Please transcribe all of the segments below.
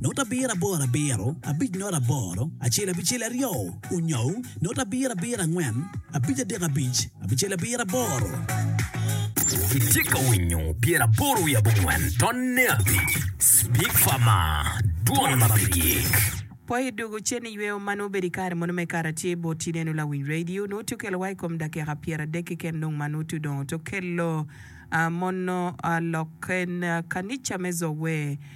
not abiro aboro abiro abic not aboro acel abicel aryo onyou not abiro abiro angwen abic adek abic abicel abiro aboro. Itye ka winyo pyera aboro wiye abongwen tonne abic Speak for more, Dwol ma pe gik. Po i dugo cen iyweyo ma nongo obedo i kare mono me Karacel bot ineno lawiny radio nongo tye okelo wa i kom dakika pyeradek keken dong ma nongo tye odongo tye okelo mono lok en kanica me Zoe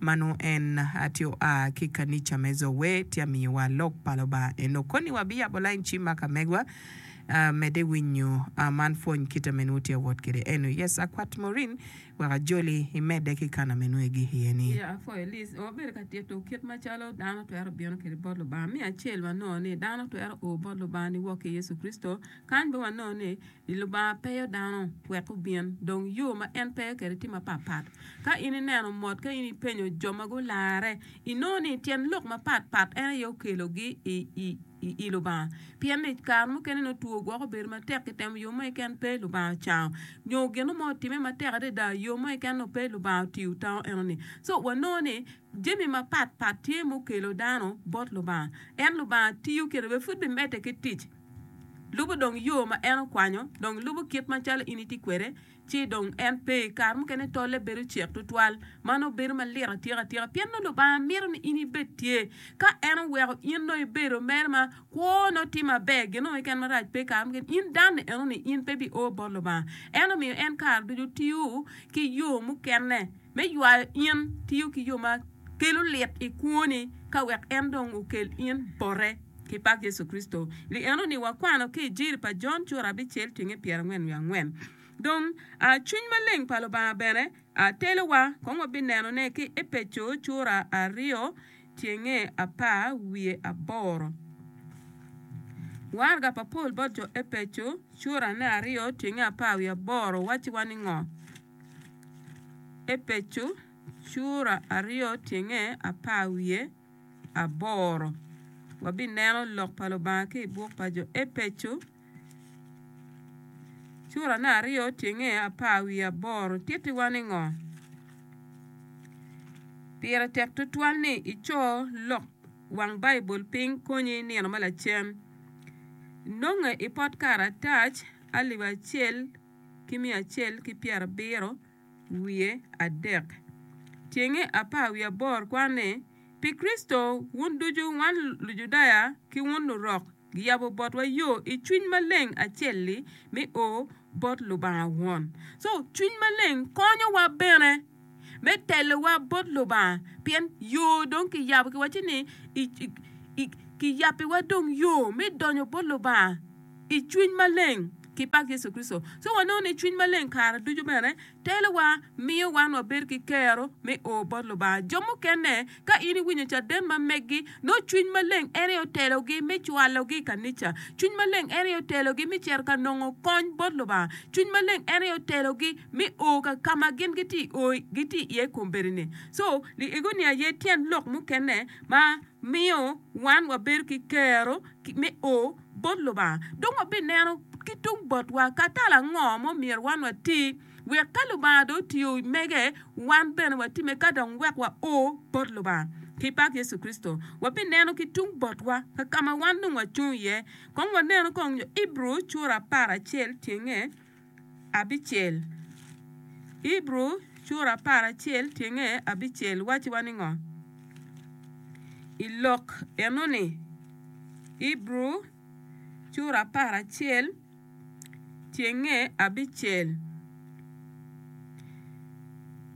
Ma nongo en a tye oa ki i kanica me Zoe, tye amiwa Lok pa Lubanga. En okoni wabiyabo lain ci ma ka megwa. Medde winyo man pwony kite me nwo tye awot kede eno. Yes a kwat Maureen wek a joli i medde ki kana me nwo i gik iye ni. Iya for a list or bedo ka tito kit ma calo dano twero bino kede bot Lubanga. Me acel wa nongo ni dano twero o bot Lubanga ni wok ki Yecu Kricito. Kany be wa nongo ni. I Lubanga peyo dano wek gubin, dong yo ma en peyo kwede tye mapat pat. Ka in ineno mot ka in ipenyo jo ma gularre, inongo ni tyen lok mapat pat en aye okelogi i Lubanga. Pien ni kare mukene nongo two gwoko bedo matek, kitemo yo mo keken pe Lubanga ocango. Nyo gin mo otime matek adada, yo mo keken nongo pe Lubanga otiyo otango enoni. So wanongo ni jami mapat pat tye mukelo dano bot Lubanga. En Lubanga tiyo kene bene pud bimedde ki tic. Lubo dong yo ma en okwanyo, dong lubo kit macalo in itye kwede, ci dong en pe. Kare mukene tolle bedo cek tutwal, ma nongo bedo malit atika atika, pien nongo Lubanga mito ni in ibed tye. Ka en oweko in nongo ibedo mere ma kwo, nongo tye maber, gin nongo keken marac pe. Kare mukene in dan-ni enoni in pe bioo bot Lubanga. En omiyo en kare ducu tiyo ki yo mukene. me ywayo in tiyo ki yo ma kelo lit i kwoni ka wek en dong okel in bote. Ki pak Yecu Kricito! Ni enoni wakwano ki i Jiri pa Jon cura abicel cenge pyerangwen wiye angwen. Dong, cwiny maleng pa Lubanga bene telowa kong wabinenone ki Epeco cura aryo cenge apar wiye aboro. Waraga pa Paul bot jo Epeco cura ne aryo cenge apar wiye aboro wacciwa ni ngo? Epeco cura aryo tyenge apar wiye aboro. Wabineno Lok pa Lubanga ki i buk pa jo Epeco curane aryo tyenge apar wiye aboro tittiwa ni ngo? Pire tek tutwal ni ico lok wang Baibul piny konyi nino ma lacen. Nonge i pot karatac alip acel. ki miya acel ki pyerabiro wiye adek. Tyenge apar wiye aboro kwano ni, Pi Kricito, wun ducu, wan Lujudaya ki wun Lurok, giyabo botwa yo i Cwiny Maleng acel-li me o bot Lubanga Won. So, Cwiny Maleng konyowa bene me telowa bot Lubanga pien yo dong kiyabo kiwaco ni kiyabbiwa dong yo me donyo bot Lubanga i Cwiny Maleng ki pak Yecu Kricito. Ci wanongo ni Cwiny Maleng kare ducu bene telowa miyo wan wabedo ki kero me o bot Lubanga. Jo mukene Ka in iwinyo caden ma megi, nongo Cwiny Maleng en aye otelogi me cwalogi i kanica. Cwiny Maleng en aye otelogi me cito ka nongo kony bot Lubanga. Cwiny Maleng en aye otelogi me o ka ka ma gin gitye i o gitye iye i kombeddi-ni. Co, liegoni aye tyen lok mukene ma miyo wan wabedo ki kero me o bot Lubanga. Dong wabineno ki tung botwa ka tal ango ma omyero wan wati. Wek ka Lubanga dong otiyo mege, wan bene watimme ka dong wek wa o bot Lubanga. Ki pak Yecu Kricito, wabineno ki tung botwa ka ka ma wan dong wacung iye. Kong wanenu kong nyo Ibru cura apar acel tyenge abicel. Ibru cura apar acel tyenge abicel wacci wa ningo i lok eno-ni? Ibru cura apar acel. Cenge abicel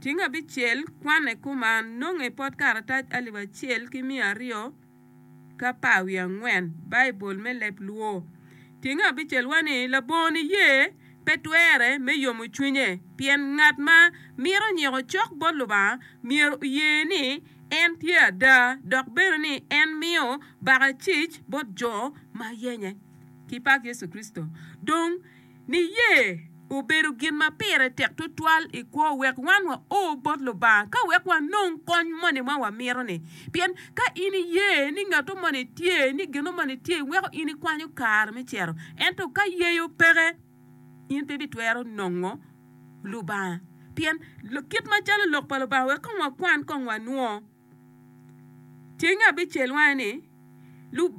Ceng abicel kwanne kuman, nonge pot karatac alip acel ki miya aryo ki apar wiye angwen, Baibul me leb Luo. Cenge abicel wa ni labongo niye pe twere me yomo cwinye pien ngat ma mito nyiko cok bot Lubanga myero oye ni en tye ada dok bene ni en miyo baka cic bot jo ma yenye. ki pak Yecu Kricito. Dong, niye obedo gin ma pire tek tutwal i kwo wek wan wao bot Lubanga ka wek wanong kony moni ma wamito-ni. Pien ka in iye ni ngatto moni tye, ni gino moni tye, weko in ikwanyo kare me cito. Ento ka yeyo peke, in pe ibitwero nongo Lubanga. Pien, kit macalo Lok pa Lubanga wek kong wakwan kong wanwo. Ceng abicel wange ni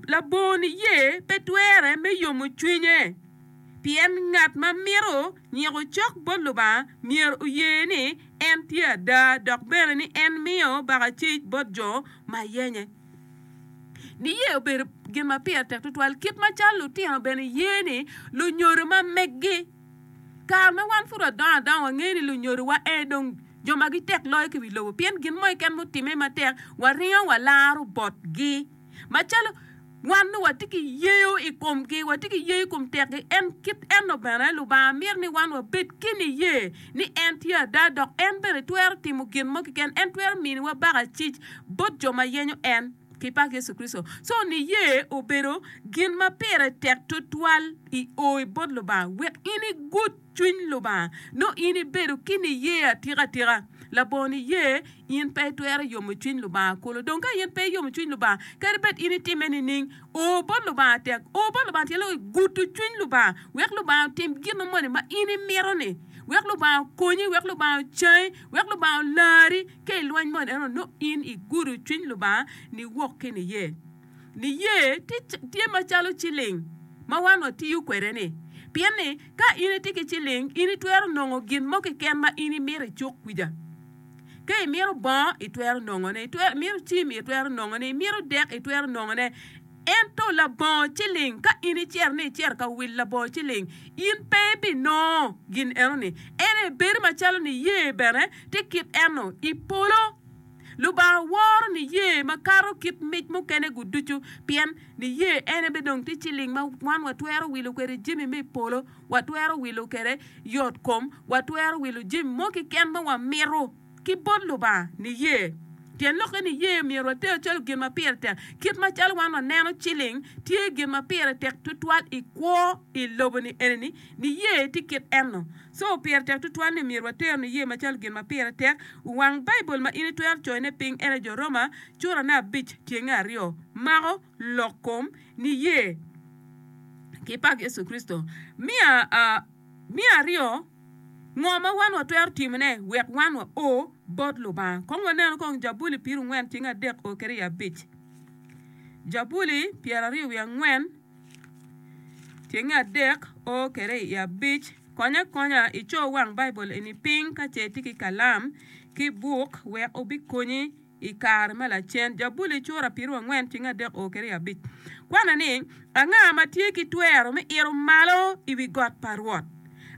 labongo niye pe twere me yomo cwinye, pien ngat ma mito nyiko cok bot Lubanga myero oye ni en tye ada dok bene ni en miyo bakacic bot jo ma yenye. Niye obedo gin ma pire tek tutwal kit macalo lutino bene ye ni lunyodo ma megi. Kare ma wan pud wadongo adonga, wangeyo ni lunyodowa aye dong jo ma gitek loyo ki wi lobo, pien gin mo keken mutimme matek, waringo walaro botgi. Macalo wan dong watye ki yeyo i komgi, watye ki yeyo i kom tekgi, en kit enno bene Lubanga mito ni wan wabed ki niye ni en tye ada dok en bene twero timo gin mo keken, en twero miniwa baka cic bot jo ma yenyo en. ki pak Yecu Kricito. Co niye obedo gin ma pire tek tutwal i o i bot Lubanga wek in igud cwiny Lubanga nongo in ibedo ki niye atika tika. Labongo niye in pe itwero yomo cwiny Lubanga kulu. Dong ka in pe iyomo cwiny Lubanga, kadi bed in itime nining, o bot Lubanga tek. O bot Lubanga tye loko igudo cwiny Lubanga wek Lubanga otim gin mo moni ma in imito-ni, wek Lubanga okonyi, wek Lubanga ocangi, wek Lubanga olari. Ka i lweny moni eno nongo in igudo cwiny Lubanga niwok ki niye. Niye tye macalo ciling ma wan watiyo kwede-ni, pien ni ka in itye ki ciling in itwero nongo gin mo keken ma in imito icuk kwica. Ka imito bongo itwero nongone, imito cim itwero nongone, imito dek itwero nongone. Ento labongo ciling, ka in iciro ni iciro ka wil labongo ciling, in pe ibinongo gin enoni. Ento ebedo macalo niye bene tye kit eno i polo. Lubanga woro niye makato kit mic mukene-gu ducu, pien niye ene bene dong tye ciling ma wan watwero wilo kwede jami me i polo, watwero wilo kwede yotkom, watwero wilo jami mo keken ma wamito. ki bot Lubanga niye, pien lokke niye myero water calo gin ma pire tek. Kit macalo wan waneno ciling, tye gin ma pire tek tutwal i kwo i lobo-ni eni-ni, niye tye kit eno. Co pire tek tutwal ni myero water niye macalo gin ma pire tek. Wang Baibul ma in itwero coyone piny en aye Jo Roma curane abic tyenge aryo. Mako lok kom niye ki pak Yecu Kricito. Me aryo. Ngo ma wan watwero timone wek wan wao bot Lubanga? Kong wanenu kong Jabuli pirongwen cing adek o kede i abic. Jabuli pyeraryo wiye angwen cing adek o kede i abic. Konye akonya ico wang Baibul eni piny ka ce itye ki kalam ki buk wek obikonyi. I kare ma lacen, Jabuli i cura piero angwen cing adek oo kede i abic kwane ni, Anga ma tye ki twero me ito malo i wi got pa Rwot?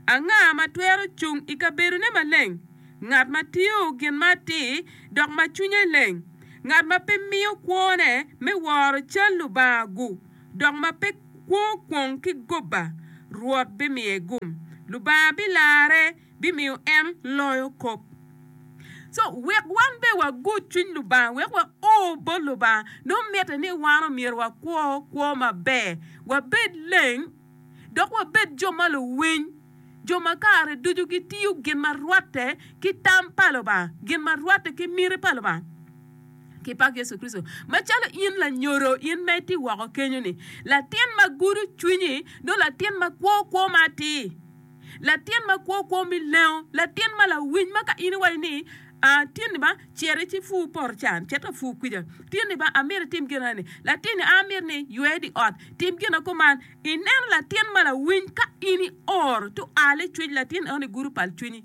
Anga ma twero cung i kabedone maleng? Ngat ma tiyo gin ma atir, dok ma cwinye leng, ngat ma pe miyo kwone me woro cal lubanga-gu, dok ma pe kwo kwong ki gubba, Rwot bimiye gum. Lubanga bilarre bimiyo en loyo kop. Co wek wan bene wagut cwiny Lubanga wek wa o bot Lubanga nongo mitte ni wan omyero wakwo kwo maber, wabed leng, dok wabed jo ma luwiny, jo ma kare ducu gitiyo gin ma rwatte ki tam pa Lubanga, gin ma rwatte ki miti pa Lubanga. Ki pak Yecu Kricito, macalo in lanyodo in ma itye woko kenyo-ni, latin ma gudo cwinyi nongo latin ma kwo kwo ma atir, Latin ma kwo kwo mi lengo, latin ma lawiny ma ka in iwaco ni, aa, tinni ba, cere ci pur poto can, cet ka pur kwica. Tinni ba, amito itim gin ane. Latinni, aa, amito ni ywe di ot, tim gina kuman. Ineno latin ma lawiny ka in ioro tual icwiny latin eno ni gudo pal cwinyi.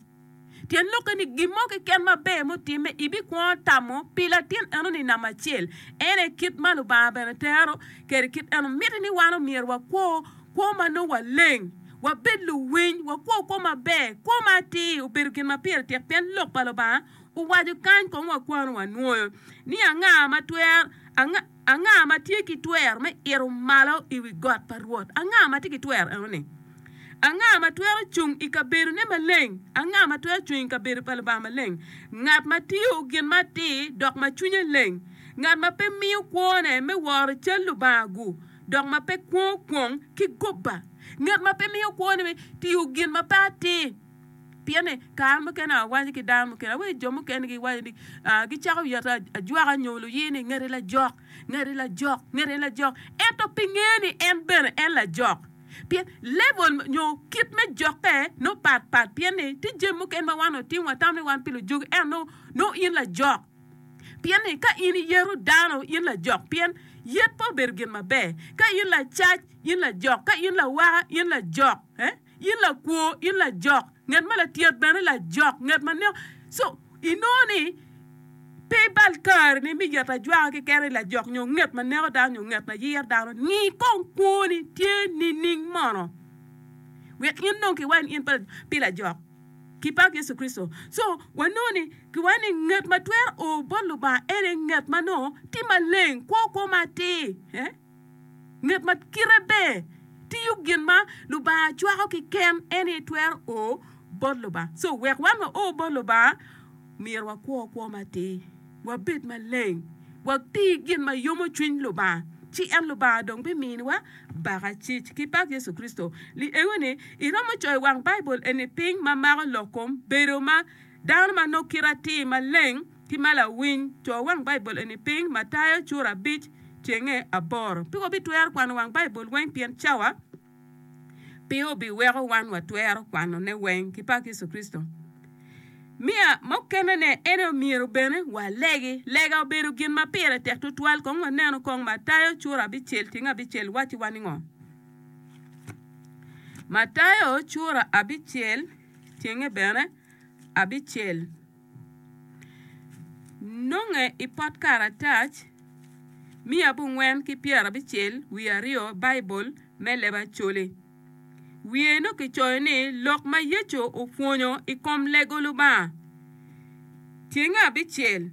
Tyen lokke ni gin mo keken maber mutimme, ibikwongo tamo pi latin enoni namba acel. En aye kit ma Lubanga bene tero kede kit eno. Mitte ni wan omyero wakwo kwo ma nongo waleng, wabed luwiny, wakwo kwo maber, kwo ma atir obedo gin ma pire tek pien Lok pa Lubanga owaco kany kong wakwano wanwoyo ni anga ma twero, anga. Anga ma tye ki twero me ito malo i wi got pa Rwot? Anga ma tye ki twero enoni? Anga ma twero cung i kabedone maleng? Anga ma twero cung i kabedo pa Lubanga maleng? Ngat ma tiyo gin ma atir dok ma cwinye leng, ngat ma pe miyo kwone me woro cal Lubanga-gu, dok ma pe kwongo kwong ki gubba, ngat ma pe miyo kwone me tiyo gin ma pe atir. Pien ni, kare mukene awaco ki dano mukene, awaco ki jo mukene giwaco ni, ah, gicako yoto ajwaka nyo luyi ni ngeti lajok, ngeti lajok, ngeti lajok. Ento pi nge ni en bene en lajok. Pien level nyo kit me jokke no pat pat pien ni ti jemi mukene ma wan otimo watamo ni wan pi lujugi en no, no in lajok. Pien ni ka in iyeto dano in lajok pien yet pe obedo gin maber. Ka in lacac in lajok, ka in lawaka in lajok. Eh? In lakwo, in lajok, nget ma latyet bene lajok, nget ma neko. So, inongo ni pe ibal kare ni me yet ajwaka keken ni lajok nyo nget ma neko dano nyo nget ma yir dano. Ngi kong kwoni tye nining mono? Wek in dong kiwac ni in pe pi lajok. Ki pak Yecu Kricito. So, wanongo ni kiwaco ni nget ma twero o bot Lubanga ene nget ma nongo tye maleng, kwo kwo matir. Eh? Ngat ma kite ber tiyo gin ma Lubanga cwako ki ken en aye twero o bot Lubanga. So wek wan wa o bot Lubanga myero wa kwo kwo matir, wa bed maleng, wa ti gin ma yomo cwiny Lubanga ci en Lubanga dong bi mini wa baka cic ki pak Yecu Kricito. Li engo ni i romo coyo wang Baibul eni piny ma mako lok kom bedo ma dano ma nongo kite atir maleng. Ki ma lawiny, co wang Baibul eni piny ma tayo cura abic cenge aboro. Pe wabitwero kwano wang Baibul weng pien cawa pe obiweko wan watwero kwanone weng. Ki pak Yecu Kricito! Miya mukenene en aye omyero bene walegi. Lega obedo gin ma pire tek tutwal. Kong wanenu kong Matayo cura abicel cenge abicel wacci wa ningo. Matayo cura abicel cenge bene abicel. Nonge i pot karatac miya abongwen ki pyerabicel wiye aryo Baibul me leb Acholi. Wiye nongo kicoyo ni lok ma Yecu opwonyo i kom lego Lubanga. Tyenge abicel.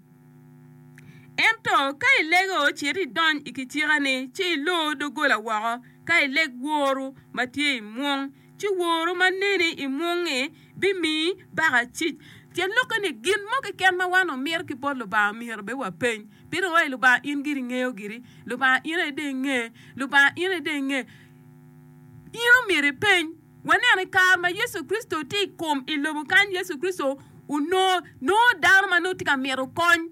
Ento ka ilego ci ito idony i kicikani ci ilor doggola woko ka ileg woru ma tye i mwong ci woro ma neni i mwongnge bimiyi baka cic. Tyen lokke ni, gin mo keken ma wan wamito ki bot Lubanga myero bene wapeny. Pien wa i Lubanga in giri ingeyo giri. Lubanga in aye dong inge. Lubanga in aye dong inge. In omyero ipeny. Waneno i kare ma Yecu Kricito tye i kom i lobo kany, Yecu Kricito onongo nongo dano ma nongo tye ka mito kony.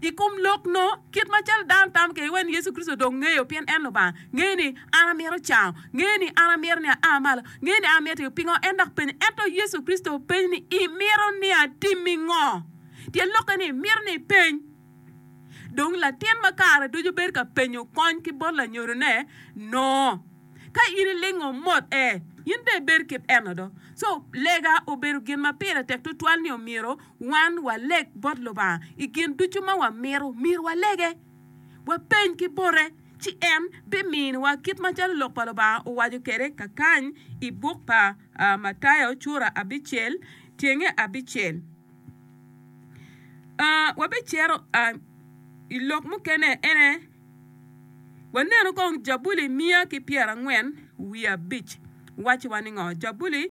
I kom lok no, kit macalo dano tam kede wai ni Yecu Kricito dong ngeyo pien en Lubanga, ngeyo ni an amito cango, ngeyo ni an amito ni aa malo, ngeyo ni an amito tiyo pingo en dok penyo. Ento Yecu Kricito penyo ni, Imito ni atimmi ngo? Tyen lokke ni, mito ni ipeny. Dong latin ma kare ducu bedo ka penyo kony ki bot lanyodone no. Ka in ilingo mot e, in bene ibed kit eno do. Co, lega obedo gin ma pire tek tutwal ni omyero Wan waleg bot Lubanga i gin ducu ma wamito, myero walege, wapeny ki bote, ci en biminiwa, kit macalo Lok pa Lubanga owaco kwede kakany i buk pa Matayo cura abicel tyenge abicel. Wabicito i lok mukene, en aye wanenu kong Jabuli miya ki pyerangwen wiye abic wacciwa ningo? Jabuli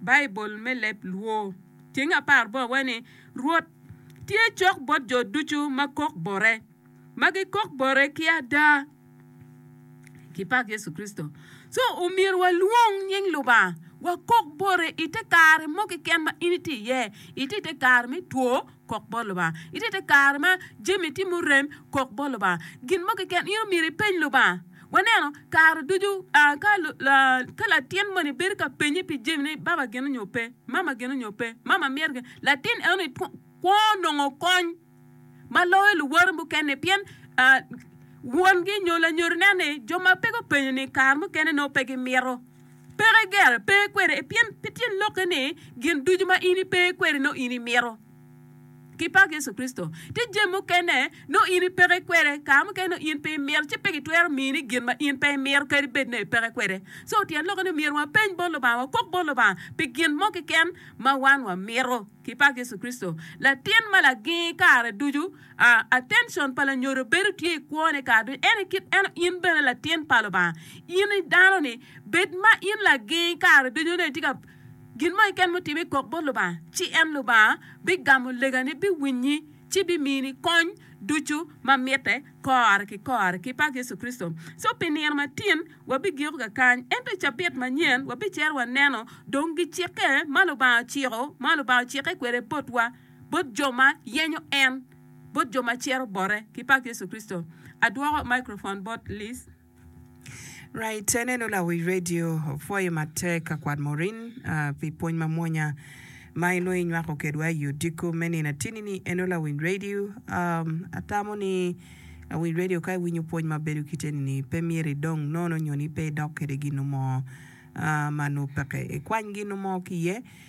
Baibul me leb Luo. Tyeng apar bo awe ni, Rwot tye cok bot jo ducu ma kok bote, ma gikok bote ki ada. Kipak Yecu Kricito. So, omyero walwong nying Lubanga, wakok bote i te kare mo keken ma in itye iye, itye i te kare me two, Kok bot Lubanga. I titi kare ma jami tye murem, kok bot Lubanga. Gin mo keken in omyero ipeny Lubanga. Waneno kare ducu ka latin moni bedo ka penye pi jami ni baba gene nyo pe, mama gene nyo pe, mama myero gene, latin enoni kwo nongo kony ma loyo luwote mukene pien wongi nyo lanyodine ni jo ma pe gupenyo ni kare mukene nongo pe gimito. Peke gere, pe kwede, e pien pi tyen lokke ni gin ducu ma in ipe kwede nongo in imito. Ki pak Yecu Kricito! Tye jami mukene nongo in ipeke kwede, kare mukene nongo in pe imito, ci pe gitwero mini gin ma in pe imito kadi bed nongo ipeke kwede. So tyen lokke ni myero wapeny bot Lubanga, wakok bot Lubanga pi gin mo keken ma wan wamito. Ki pak Yecu Kricito! Latin ma lagingi kare ducu A Attention pa lanyodo bedo tye i kwone kare ducu. Ento kit eno in bene latin pa Lubanga, in i dano ni, bed ma in lagingi kare ducu ni tye ka gin mo keken mutime ikok bot Lubanga, ci en Lubanga bigamo legani, biwinyi, ci bimini kony ducu ma mitte kore ki kore ki pak Yecu Kricito. So pi nino matin wa bigiko kakany, ento i cabit manyen wa bicero wa neno dong gicikke ma Lubanga ociko ma Lubanga ocikke kwede botwa. bot jo ma yenyo en, bot jo ma ciro bote. Ki pak Yecu Kricito. Adwoko microphone bot Liz. Right, enenu lawic radio opwoyo matek ka kwat Maureen pi pwony mamwonya ma en nongo inywako kedwa i odiko me nino atini ni. Ennu lawic radio, atamo ni lawic radio ka iwinyo pwony ma bedo kit eni ni pe myero idong nono nyo ni pe idok kede ginu mo ma nongo peke ikwany ginu mo ki iye.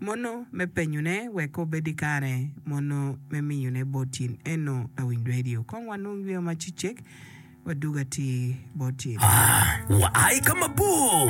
Mono me penyone wek obed i kare, mono me miyone bot in eno lawiny redio. Kong wanung yweyo macecek, wadug atir bot in. A, Wa i ka mabor.